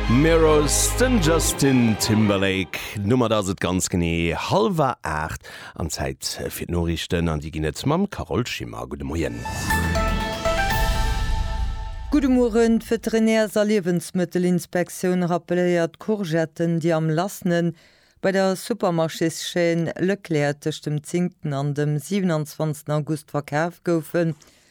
Mirrors, den Justin Timberlake. D'Nummer, da ass et ganz genee hallwer 8 an Zäit fir d'Noriichten an déi ginn et mam Carole Schimmer. Gudde Moien. Gudde Mueren. D'Veterinärs a Liewensmëttelinspektioun rappeléiert, d'Courgetten, déi am lassene bei der Supermarchéschaîne Leclerc tëscht dem 10 an dem 27 August verkaf goufen,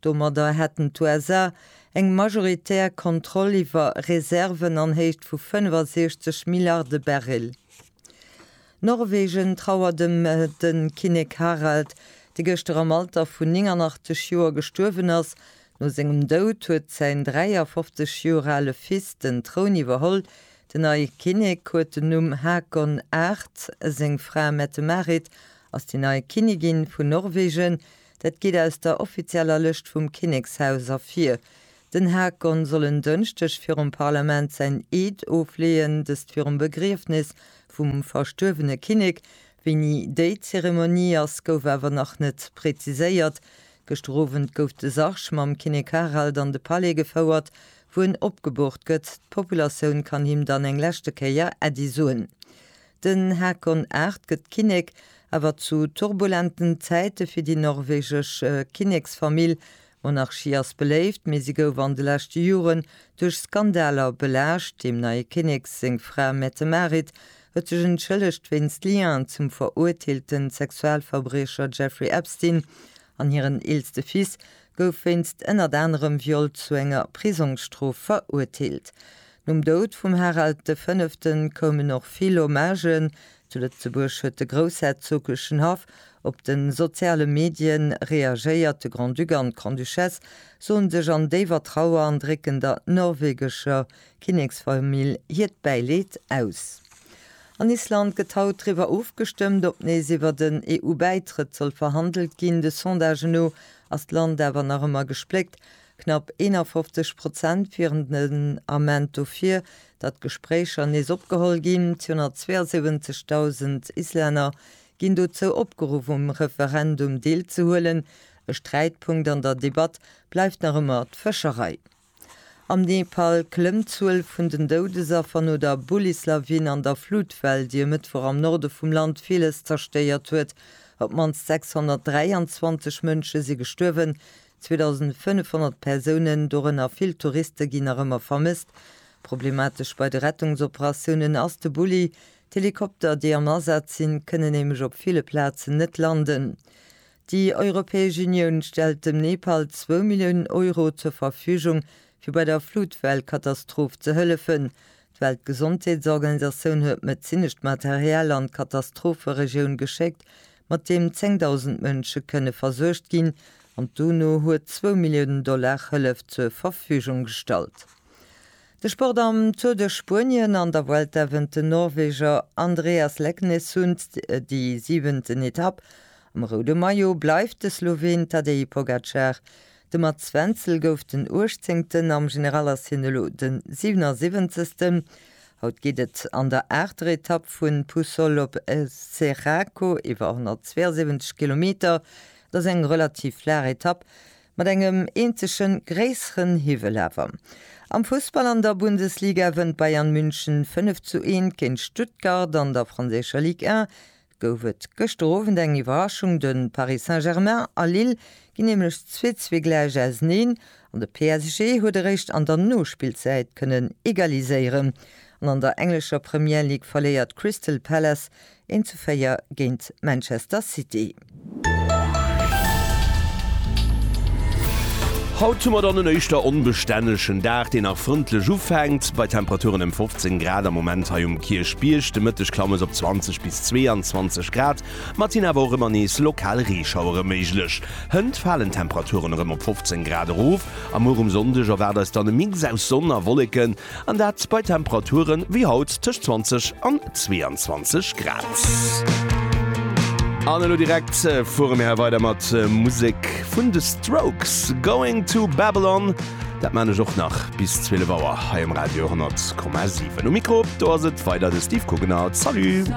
Domadder hätten d'USA eng majoritär Kontroll iwwer Reserven an Héicht vu 65 Milliarde Barrel. Norwegen trauert ëm de Kinnek Harald, dee gëschter am Alter vun 89 Joer gestuerwen ass. No sengem Doud huet säin 53 Joer ale Fils den Troun iwwerholl. Den neie Kinnek huet den Numm Haakon VIII. Seng Fra Mette-Marit ass déi nei Kinnigin vun Norwegen. Dat geet aus der offizieller Lëscht vum Kinnekshaus ervir. Den Haakon soll en Dënschdeg virum Parlament säin Eed ofleeën, dëst virum Begriefnis vum verstuerwene Kinnek. Wéini déi Zeremonie ass, gouf awer nach net präziséiert. Gëschter Owend gouf de Sarg mam Kinnek Harald an de Palais gefouert, wou en opgeboort gëtt. D'Populatioun kann him dann eng leschte Kéier Äddi soen. Den Haakon VIII. gëtt Kinnek, awer zu turbulenten Zäite fir déi norwegesch Kinneksfamill. D'Monarchie ass beléift, mee si gouf an de leschte Joren duerch Skandaler belaascht. Dem neie Kinnek seng Fra Mette-Marit huet sech entschëllegt wéinst Liaison zum verurteelte Sexualverbriecher Jeffrey Epstein an hiren eelste Fils gouf wéinst ënnert anerem Viol zu enger Prisongsstrof verurteelt. Nom Doud vum Harald de Fënneften koumen och vill Hommagen, zu Lëtzebuerg huet de groussherzoglegen Haff op de soziale Medien reagéiert, de Grand-Duc an d'Grande-Duchesse soen sech an déiwer Trauer an drécken der norwegescher Kinneksfamill hiert Bäileed aus. An Island gëtt haut driwwer ofgestëmmt, ob nees iwwer den EU-Bäitrëtt soll verhandelt ginn. De Sondagen no ass d'Land awer nach ëmmer gespléckt, Knapp 51 Prozent wieren den Ament dofir, datt d'Gespréicher nees opgeholl ginn. 272.000 Islänner ginn dozou opgeruff, um Referendum deelzehuelen. E Sträitpunkt an der Debatt bleift nach ëmmer d'Fëscherei. Am Nepal klëmmt d'Zuel vun den Doudesaffer no der Bullislawin an der Flutwell, déi e Mëttwoch am Norde vum Land villes zerstéiert huet. Op d'mannst 623 Mënsche si gestuerwen, 2.500 Persounen, dorënner vill Touriste ginn nach ëmmer vermësst. Problematesch bei de Rettungsoperatiounen ass de Bulli. D'Helikopter, déi am Asaz sinn, kënnen nämlech op ville Plazen net landen. Déi Europäesch Unioun stellt dem Nepal zwou Milliounen Euro zur Verfügung, fir bei der Flutwell-Katastroph ze hëllefen. D'Weltgesondheetsorganisatioun huet medezinescht Material an d'Katastropheregioun geschéckt, mat deem 10.000 Mënsche kënne versuergt ginn, an d'UNO huet zwou Milliounen Dollar Hëllef zur Verfügung gestallt. De Sport Am Tour de Spuenien an der Vuelta wënnt den Norweger Andreas Leknessund déi siwenten Etapp. Am roude Maillot bleift de Sloween Tadej Pogacar. De Mats Wenzel gouf den Uechtzéngten am General, ass hien elo den 77. Haut geet et an der aachter Etapp vun Puçol op Serraco iwwer 172 Kilometer. Et ass eng relativ flaach Etapp, mat engem eenzege gréisseren Hiwwel awer. Am Fussball, an der Bundesliga wënnt Bayern München 5 zu 1 géint Stuttgart, an der franséischer Ligue 1 gouf et gëschter Owend eng Iwwerraschung, de Paris Saint-Germain a Lille ginn nämlech zwee zwee gläich auserneen an de PSG huet eréischt an der Nospillzäit kënnen egaliséieren an an der englescher Premier League verléiert Crystal Palace 1 zu 4 géint Manchester City. Haut hu mer dann en éischter onbestännegen Dag, deen nach frëndlech ufänkt, bei Temperaturen ëm 15 Grad am Moment hei um Kierchbierg. De Mëtteg klamme se op 20 bis 22 Grad, ma et sinn awer och ëmmer nees lokal Reeschauere méiglech. Hënt falen d'Temperaturen erëm op 15 Grad erof a muer um Sonndeg erwaart eis dann e Mix aus Sonn a Wolleken, An dat bei Temperaturen wéi haut tëscht 20 an 22 Grad. An elo direkt fuere mir weider mat Musek vun de Strokes, Going to Babylon. Dat man ech och nach bis 12 Auer hei um Radio 10,7. Um Mikro do ass et weider de Steve Kugener. Salut!